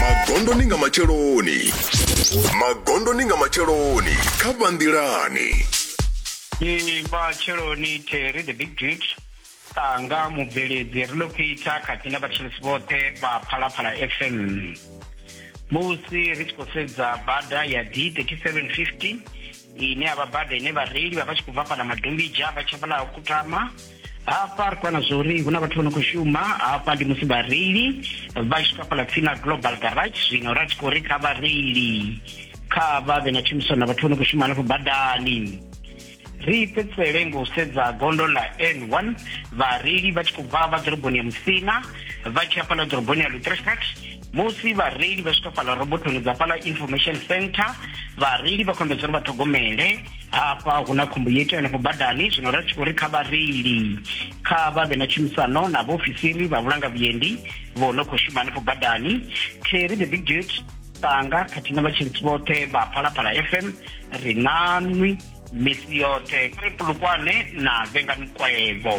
magondoni nga matsheloni magondoni nga matsheloni kha vhanḓilani Ee, matsheloni Terry the big dude tanga mubveledzi ri ḽo phitha khathihi na vhatshilisi vhoṱhe vha phalaphala fm musi ri tshi khou sedza bada ya d 3750 ine ya vha bada ine vhareili vha vha tshi khou bva fhala madombija vha tsha fhala kutama hafha ri kwana zwa uri hu na vhathu vha no khou shuma hafha ndi musi vhareili vha tshi kafhala tsini na global garage zwino ra tshi khou ri kha vhareili kha vha vhe na tshumisano na vhathu vha no khou shuma hanefho badani ri fhedzisele ngo sedza gondo ḽa n1 vhareili vha tshi khou bva vha ḓoroboni ya musina vha tshi hafhala ḓoroboni ya lutrefat musi vhareili vha swika fhala robothoni dza fhala information center vhareili vha khombedza uri vha ṱhogomele hafha hu na khombo yo iteyo henefho badani zwino ri tshi khou ri kha vhareili kha vha vhe na tshumisano na vhaofisiri vha vhulanga vhuendi vho no khou shuma henefho badani terry the big dut tanga khathihi na vhatshiritsi vhoṱhe vha phalaphala fm ri nanwi misi yoṱhe kuri pulukwane na vhengani kwevho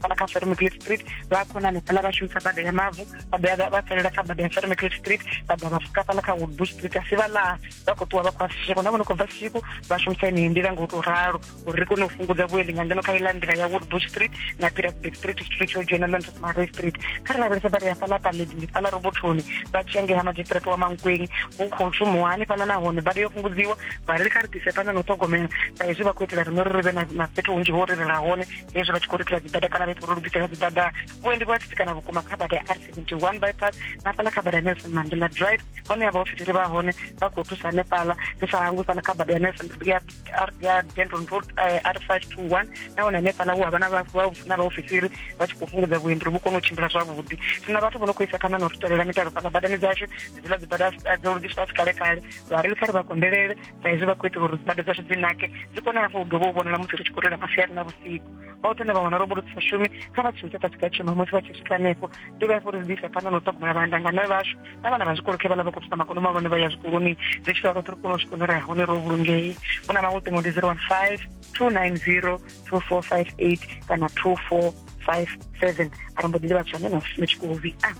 fhala kha Fermicliff Street vha khona hanefhala vha shumisa bada ya mavu vha ḓa vha tselela kha bada ya Fermicliff Street vha ḓa vha fuka fhala kha Woodbush Street asi vha ḽa vha khou ṱuwa vha khou asisheko na vhono khou bva siku vha shumisa yeneyi nḓila nga u tou ralo uri ri kone u fhungudza vhuendi nga ngeno kha iḽa nḓila ya Woodbush Street na Pirateburg Street Street yo dzhena na Marway Street kha ri lavhelesa bada ya fhala Paledi ndi fhala robothoni vha tshi engea ha magistrate wa Mankweng hu khou shumiwa hani fhala nahone bada yo fhungudziwa vha ri kha ri ḓise fhano na u ṱhogomela sa izwi vha khou itela riṋe uri ri vhe na fhethu hunzhi ho ri rela hone hezvo vha tshi khou lukisa dzibada kana vha tshi khou lugisela dzibada vhuendi vhu a tsitsikana vhukuma kha bada ya r 71 bypass na fhaḽa kha bada ya nelson mandela drive hone ya vhaofisiri vha hone vha khou thusa hanefhaḽa ri sa hangwi fhaḽa kha bada ya nelson ya denton road eh, r 521 nahone hanefhaḽa hu havha na vhaofisiri vha tshi khou fhungudza vhuendi ri vhu kone u tshimbila zwavhuḓi sina vhathu vho no khou isa khana na u ri tolela mitalo fhaḽa badani dzashu dziḽa dzibada dzo lugiswa tshi kale kale vhareili kha ri vha kondelele sa izwi vha khou itela uri dzibada dzashu dzi nake dzi kone hafhu u dovha u vhonala musi ri tshi khou rela masiari na vhusiku vha u tenda vha wana robo ri sa shumi kha vha tshintsha fhasi ka tshuma musi vha tshi swika hanefho ndi vha fho ri zwi isa phanḓa na u ṱhogomela vhaandangane vhashu na vhana vha zwikolo khe vha ḽa vha khou thusa makono mahulwane vha ya zwikoloni ri tshi vha roṱhe ri kone u swika nore hone ro vhulungei hu na maṅwe ṱingo ndi zero one five two nine zero two four five eight kana two four five seven arali mbo ḓi ndi vha tshone na u shume tshikolo vhi a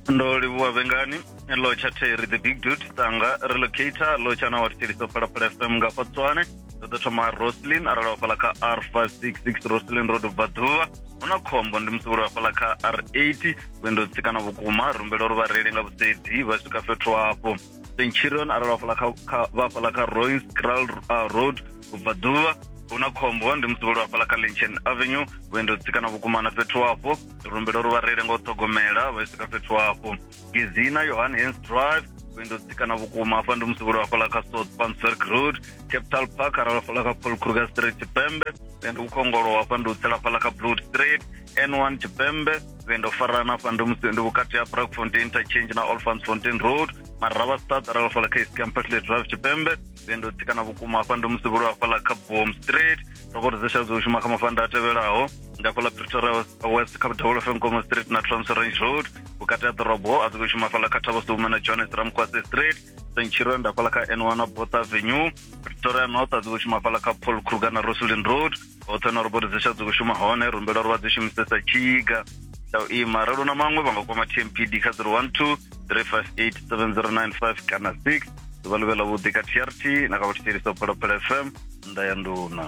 ndo livhuwa vhengani lo tsha theri the big dude tanga relocator lo tsha na watshiliso phalaphala fm nga fatswane ndo ḓo thoma roslin arali wafhala kha r 566 roslin road bva ḓuvha hu na khombo ndi musi vhuli wafhala kha r 80 vhuendo tsikana vhukuma rumbela uri vhareili nga vhusedzi vha swika fhethu hafho centurion arali wafhala kha- kha- vha fhala kha roins kral uh, road ubva ḓuvha hu na khombo ndi musi vhuli wafhala kha linchen avenue vhuendo tsikana vhukuma na fhethu hafho rumbela uri vha reile nga u ṱhogomela vha swika fhethu hafho gezina yohan hans drive vhuendo tsikana vhukuma hafha ndi musi vhuli hafhaḽa kha south panswerk road capital park arali hafhaḽa kha paul kruger street tshipembe vhuendo vhukhongolo hafha ndi u tsela hafhaḽa kha blood street n one tshipembe vhuendo farana hafha ndi musi ndi vhukati ha brakfontein interchange na olfansfontein road maravha stad arali hafhaḽa kha east campasle drive tshipembe Nṋe ndo tsikana vhukuma hafha ndo musevhulu hafhaḽa kha Boom Street ndo khou ri zwo shuma kha mafanda a tevhelaho nga hafhaḽa Pretoria West kha Double FM Nkomo Street na Trans Range Road vhukati ha ḓorobo a dzi khou shuma hafhaḽa kha Thabo Sume na Johannes Ramkwase Street Centurion nda hafhaḽa kha N1 na Botha Avenue Pretoria North a dzi khou shuma hafhaḽa kha Paul Kruger na Roslin Road hoṱhe na uri bodi dzi tsha dzi khou shuma hone ri humbela uri vha dzi shumisesa tshiga tsha u ima ralo na maṅwe vha nga kwama tmpd kha 012 358 7095 kana 6 ḓuvha ḽi vhe ḽavhuḓi kha trt na kha vhathetshelisa u phalaphala fm nnḓa ya nduna